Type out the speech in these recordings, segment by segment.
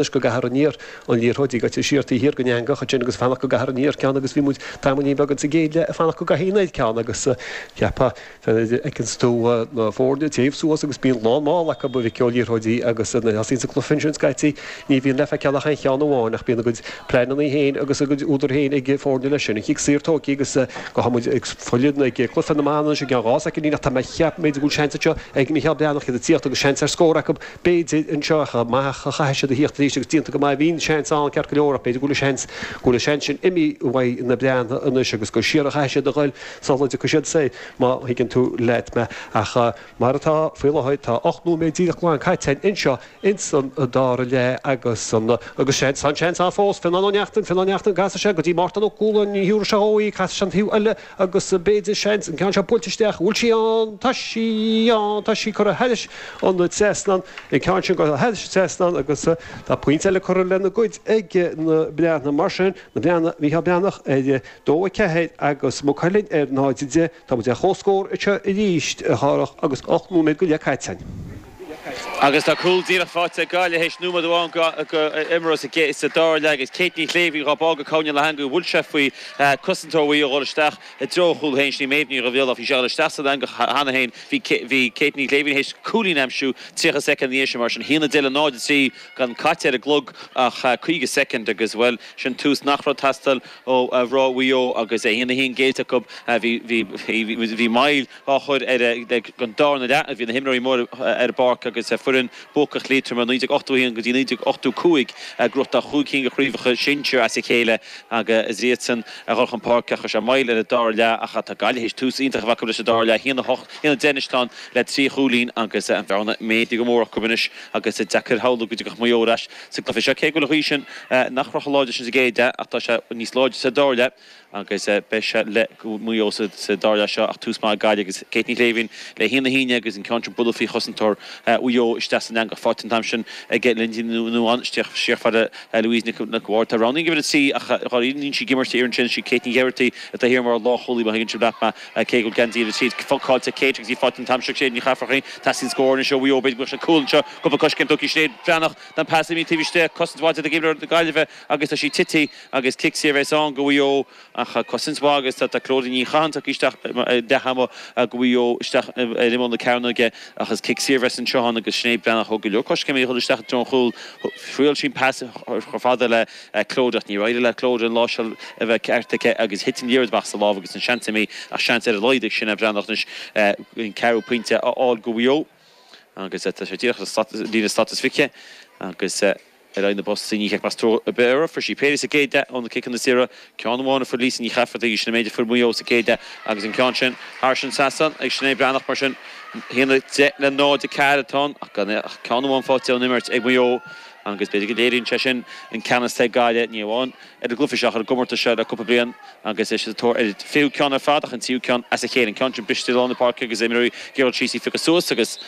leis go gcaithfear aniar, an liathróid ag eitilt siar taobh thiar den eangach ansin agus ag fanacht go gcaithfear aniar ceann agus bhí muid tamaillín beag insa gcéad leath ag fanacht go gcaithfí aniar ceann agus cheapfá, feiceanns tú na foirne ag téamh suas agus bíonn lán mála acu, a mhic ó, liathróidí agus nuair a thosaíonns an cluiche ansin scaití ní bhíonn le feiceáil ach aon cheann amháin ach bíonn a gcuid pleaineanna féin agus a gcuid údar féin ag foirne leis sin. An chic saor tógtha agus beidh muid ag filleadh ag cluiche na mban anois i gceann dhá soicindín ach tá mé ag ceapadh go bhfuil seans anseo ag Mícheál Breathnach iad ag tíocht agus seans ar scór acu b'fhéidir, anseo ach chomh maith ach chaithfidh siad a theacht arís agus déanta go maith a bhíonn, seans ann, ceart go leor ach b'fhéidir go bhfuil an seans, go bhfuil an seans sin imithe uaidh na Breathnaigh anois agus gur siar a chaithfidh siad a dhoil sula dtiocfaidh siad soir, má thuigeann tú leat mé. Ach mar atá faoi láthair tá ocht nóiméad díreach glan caite againn anseo ins an dara leath agus an, agus seans, tá an seans ann fós, Fionnán Ó Neachtain, Fionnán Neachtain, an gcasfaidh sé go dtí Mártan Ó Cualáin, ní thiúrfaidh sé dhó í, casfaidh sé an taobh eile, Agus b'fhéidir, seans, an ceann seo buailte isteach, an bhfuil sí ann? Tá sí ann! Tá sí curtha thairis an trasnán, an ceann sin curtha thairis an trasnán agus tá pointe eile curtha lena gcuid ag na Breathnaigh. Mar sin, na Breathnaigh, Mícheál Breathnach ar a dó, a ceathair, agus Maigh Cuilinn ar náid, a deich. Tá muid ar comhscór anseo arís, a Dharach, agus ocht nóiméad go leith caite againn. Agus tá cúl díreach faighte ag Gaillimh tar éis nóiméad amháin imeartha sa dara leath agus Kate Ní Shléibhín dhá bá go cúinne na heangaí bhuail sé faoi chosantóir Mhaigh Eo a dhul isteach i dtreo chúl féin sin í Méabh Ní Dhubhshláine ach bhí sé ag dul isteach san eangach cheana féin bhí Kate Ní Shléibhín tar éis cúilín a aimsiú 30 soicind anois mar sin 1-10 le 0-3 gan caite ar an gclog ach 50 soicind agus bhuel sin tús nach raibh ag teastáil ó mhná Mhaigh Eo agus 1-1 géillte acu bhí bhí bhí bhí moill á chur ar an darna leath a bhí na himreoirí móra ar an bpáirc agus foireann buacach Liatroma 1981 go dtí 1985 ag crochadh cúig cinn de chraobhacha sinsir as a chéile agus iadsan a chur chun páirce ach chuir sé moill ar an dara leath ach tá Gaillimh théis tús iontach a bheith acu leis an dara leath 1-10 anois atá ann le trí chúilín agus an bhearna méadaithe go mór acu anois agus deacair a shamhlú go dtiocfadh Maigh Eo ar ais sa gcluiche seo cé go bhfuil an ghaoth sin nach raibh chomh láidir sin sa gcéad leath ach tá sé níos láidre sa dara leath. Agus beidh sé le Maigh Eo sa dara leath seo ach tús maith ag Gaillimh agus Kate Ní Shléibhín le haon a haon agus an ceann seo bualadh faoi chosantóir Mhaigh Eo isteach san eangach. Faighte an t-am sin ag Lynsey Noone, siar go Louise Nic an Bhaird atá roghnaithe in uimhir a trí ach níl sí ag imirt thiar ansin sí Kate Ní Ghearaighty atá thiar mar lánchúlaí má thuigeann sibh leat mé cé go bhfuil geansaí uimhir a trí fágáilte ag Kate agus í faighte an t-am seo ag Sinéad Nic Eafarcaigh, teastaíonn scór anois ó Mhaigh Eo b'fhéidir go mbeadh seans cúl anseo cúpla coiscéim tugtha ag Sinéad Bhreathnach an pas imithe taobh istigh cosaint mhaith déanta ag imreoir na Gaillimhe agus tá sí tití. Agus cic saor bheas ann go Mhaigh Eo ach cosaint mhaith agus tá Clodagh Ní Chatháin tugtha isteach i leath ama go Mhaigh Eo isteach ar imeall na cearnóige ach is cic saor bheas anseo ann agus Sinéad Breathnach thóg go leor coiscéimeanna ag dhul isteach i dtreo an chúil, thriail sí an pas chomh fada le Clodagh ach níor éirigh le Clodagh an láimhseáil a bheith ceart aici agus thit an liathróid amach as a lámh agus an seans imithe ach seans ar a laghad ag Sinéad Breathnach anois an ceathrú pointe a fháil go Mhaigh Eo agus tá sé díreach ar líne staitisticithe agus. Ar aghaidh na bpostaí, ní heicfeas tú ar bith orthu. Fuair sí péire sa gcéad leath ó na ciceanna saora, ceann amháin a fuair Lisa Nic Eafartaigh agus sin an méid a fuair Maigh Eo sa gcéad leath agus an ceann sin thar an trasnán ag Sinéad Breathnach mar sin a haon a deich le 0, 4 an tan ach gan ach ceann amháin faighte ón imirt ag Maigh Eo agus b'fhéidir go léiríonn sé sin an ceannas atá ag Gaillimh ní amháin ar an gcluiche seo ach ar an gcomórtas seo le cúpla bliain agus iad sa tóir ar a fichiú ceann ar fad ach an tríú ceann as a chéile. An ceann sin briste i lár na páirce agus imreoirí ag iarraidh é a phiocadh suas agus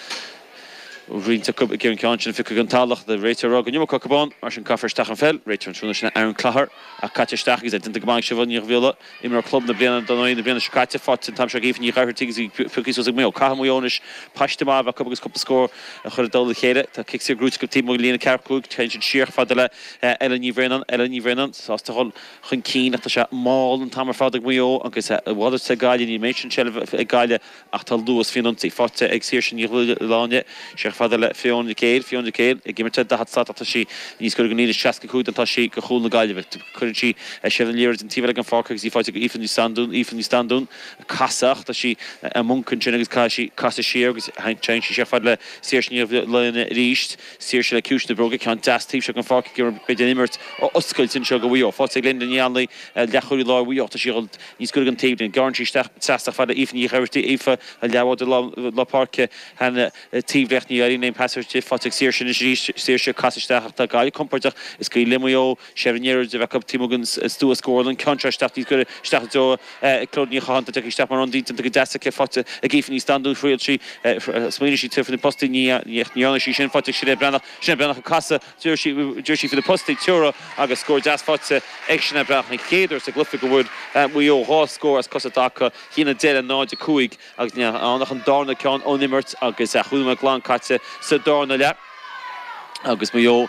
roinnt acu ag iarraidh an ceann sin a phiocadh den talamh, an réiteoir ag rá go raibh an iomarca acu ann, mar sin caithfear isteach an pheil, réiteoir an tráthnóna seo ná Aaron Clogher, ach caite isteach agus é déanta go maith ag Siobhán Ní Dhuibhghiolla, imreoir club na bliana don Fhaing na bliana seo caite, faighte an t-am seo ag Aoife Nic Oireachtaigh agus í pioctha suas ag Maigh Eo. Caithfidh Maigh Eo anois, paiste maith a bheith acu agus cúpla scór a chur i dtoll a chéile. Tá cic saor gnóthaithe acu taobh amuigh den líne 45, téann siad siar chomh fada le Ella Ní Bhraonáin, Ella Ní Bhraonáin sásta a dhul chun cinn ach tá sé mall an t-am ar fad ag Maigh Eo agus a mhalairt le Gaillimh, nuair a bhíos an tseilbh ag Gaillimh. Ach tá luas faoin ionsaí. Faighte ag Saoirse Ní Dhubhshláine. Siar chomh fada le Fiona Nic Éil, Fiona Nic Éil, ag imirt ar 40 slat ach tá sí níos gaire go líne 65 ná atá sí go chúl na Gaillimhe. Cuireann sí sall an liathróid an taobh eile den pháirc agus í faighte ag Aoife Ní Standún, Aoife Ní Standún ag casadh ach tá sí i mponc ansin agus caithfidh sí casadh siar agus téann sí siar chomh fada le Saoirse Ní Dhubhshláine arís. Saoirse le ciumhais na bróige, ceann deas taobh seo den pháirc ag iarraidh an chuid den imirt a oscailt anseo go Mhaigh Eo. Faighte ag Lynda Ní Áinle, leathchúlaí láir Mhaigh Eo, tá sí níos gaire don taobhlíne. Gearrann sí isteach trasna chomh fada le Aoife Nic Oireachtaigh, Aoife an leathbhádóir lár páirce, an taobh clé ach, ní éiríonn aon phasáiste di. Faighte ag Saoirse anois arís. Saoirse ag casadh isteach ach tá Gaillimh compordach. Is cuma leo Maigh Eo seilbh na liathróide a bheith acu taobh amuigh den stua scórála, an ceann seo isteach níos gaire isteach i dtreo Clodagh Ní Chatháin. Tagtha isteach mar ionadaí, déanta go deas aici. Faighte ag Aoife Ní Standún. Thriail sí, smaoinigh sí, tabhairt faoi na postaí, ní dhearna sí sin. Faighte ag Sinéad Breathnach. Sinéad Breathnach ag casadh. Dhírigh sí ar na postaí ag teora agus scór deas faighte ag Sinéad Breathnach, an chéad uair sa gcluiche go bhfuair Maigh Eo dhá scór as cosa i dtaca, a haon a deich le 0-5 agus níl ann ach an darna ceann ón imirt agus cúig nóiméad glan caite sa darna leath agus Maigh Eo